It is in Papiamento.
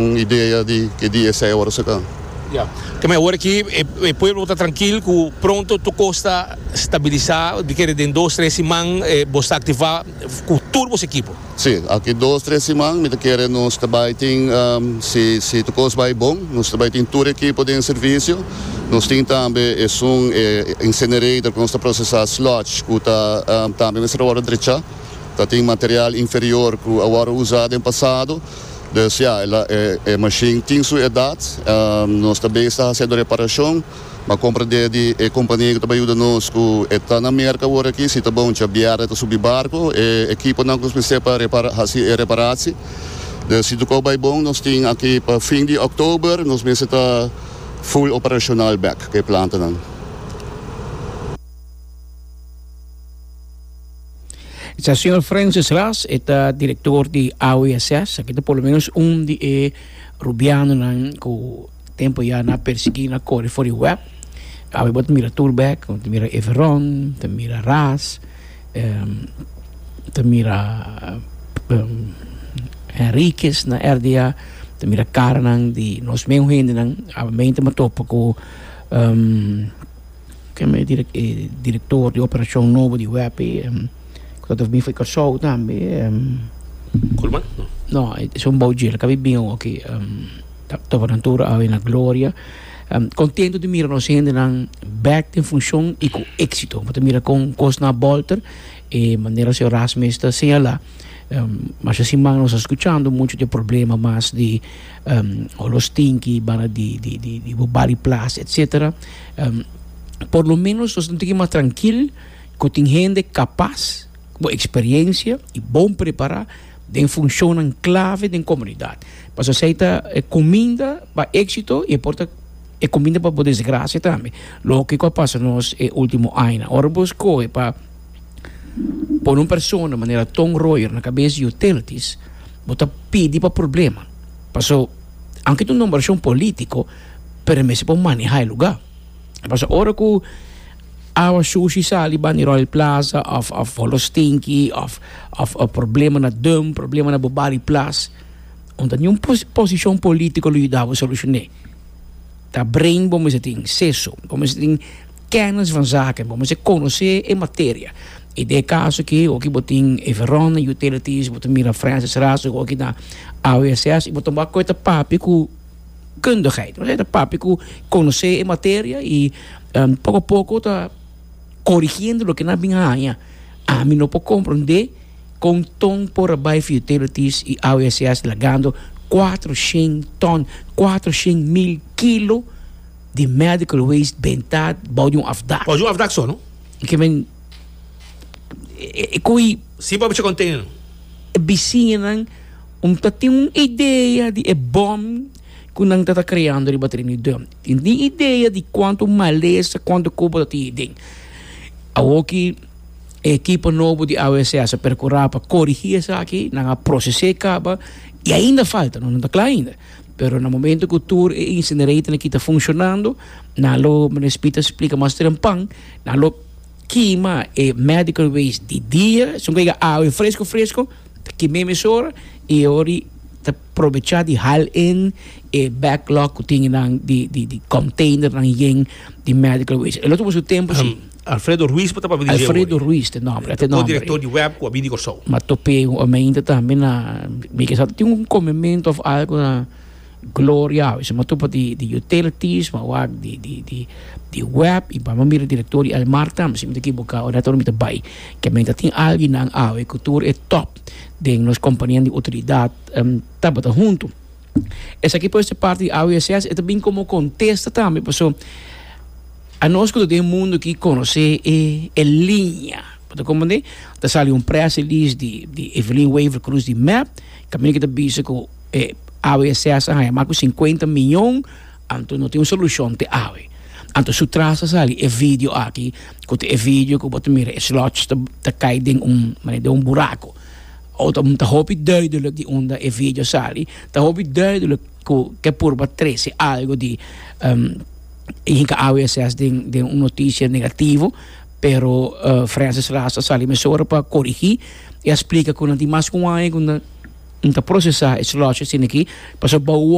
Un idea di ke di esei ora su ka. Ya. Keme awor aki e pueblo bo ta trankil ku pronto tur kos ta stabilisa, mi kere den dos tres siman bo sta aktivá ku tur bo ekipo? Si, aki dos tres siman mi ta kere nos ta bai tin si si tur kos bai bon nos ta bai tin tur ekipo den servisio. Nos tin tambe esun e incinerator ku nos ta prosesá sludge ku ta tambe mester a wòrdu drechá. Ta tin material inferior ku a wòrdu usá den pasado. Dus ya, e mashin tin su edat. Nos ta bay sa haciendo reparacion. M'a compra di e di e compania cu ta bay yuda nos cu e ta na Merca awor aki. Si ta bon djabierde ta subi barco e equiponan cu nos mester pa repara, haci e reparaci. Dus si toco bay bon nos tin aki pa fin di Oktober nos mester ta full operacional bek cu e plantanan. E ta señor Francis Ras, e ta director di AWSS, aki ta por lo menos un di e rubianonan cu tempo ya na persegui, na core for di web. Awe bo ta mira tur bek, bo ta mira Everon, bo ta mira Ras, bo ta mira Henriquez na RDA, bo ta mira caranan di nos meun hendenan, awe mey ta matopa cu Kende e direktor di operashon nobo di WEP ku ta tabata bin for Kòrsou tambe. Kulman? No, e son bou dje, el a kabí bin awo aki. Tabanan tur awe na gloria. Kontentu di mira nos hendenan bèk den funshon i ku éksito. Bo ta mira kon kosnan a bòlter, e manera señor Ras mes ta señalá, masha siman nos a skuchando muchu di e problema mas di olor stinki banda di bo bali plas, etsetera. Por lo ménos nos ta tiki mas trankil ku tin hende kapas, ku eksperiensia i bon prepará den funshonnan klave den komunidat. Pasobra esei ta e kuminda pa éksito i e por ta e kuminda pa bo desgrasia tambe. Loke ku a pasa nos e último añanan. Ora bo skohe pa pone un persona manera Tom Royer na kabes di utilities, bo ta pidi pa problema. Paso, aunke ta un nombrashon polítiko pero e mester por maneha e lugar paso ora cu awa shushi sali bani Royal Plaza of of Hollow Stinky of of problema na Dum problema na Bobali Plas un ta niun posicion politico lo yuda bo solucione ta brain bo mester tin seso bo mester tin kenis van zaken bo mester conoce e materia y den e caso aki oki bo tin Everon Utilities bo ta mira Francis Razo oki na AWSS y bo ta wak cu e ta papia cu. kundigheid. Osea ta papia ku konosé e materia i poko a poko ta korigiendo loke nan a bin haña. Ami no por komprondé kon ton por a bai for utilities i AWSS lagando kuater shen tòn, kuater shen mil kilo di medical waste bentá bou di un afdak. Bou di un afdak so no? I ke men e ko'i. Sin por a bichi kontener. E bisiñanan. Un ta tin un idea di e bom ku nan ta ta kreando riba Trinidad. Tin tin idea di kuantu malesa, kuantu koba ta tin aden. Awor ki e ekipo nobo di AWSS a perkurá pa korigí esaki, nan a proses'é kaba i ainda falta, no ta kla ainda. Pero na momentu ku tur e incineratornan aki ta funshonando, nan lo, Meneer Smit a splika mas trempan, nan lo kima e medical waste di dia, esun ku a hega awe fresko fresko, Ki mim es or y e or y ta probecha di hal in e backlog cu tin nan di di di container nan yen di medical waste. E lo ta por su tempo si. Alfredo Ruiz por ta papia di dje ora. Alfredo Ruiz ta e nomber. E ta co-director di web cu a bini Corsou. Ma top'e un omente tambe na mi ke sa ta tin un comemento of algo na. Gloria a veces matupa di di utilities ma wak di di di di web y bamba mira directorio di Elmar tambe si mi ta ekibuka ora tur mi ta bay kiamen ta tin alginan awe ku tur e top den nos kompanianan di utilidad tabata huntu esaki por ser parti di AWSS e ta bin komo kontesta tambe paso anos ku ta den mundo aki konosé e e liña bo ta komprendé ta sali un press release di di Evelyn Wever Croes di mep kaminda ki ta bisa ku. E awe e ses a haya mas cu cincuenta miyon, anto no tin un solucion te awe. Anto su tras ta sali e video aki, cu ta e video cu bo ta mira e slots ta cay den un, mane den un buraco. Otom ta hopi duidelijk di unda e video sali, ta hopi duidelijk cu ke purba trece algo di hinca awe e ses den un noticia negativo. Pero Francis Ras a sali mesora pa korigí i a splika ku nan tin mas ku un aña ku nan ta prosesá e slòsh asin'aki pasobra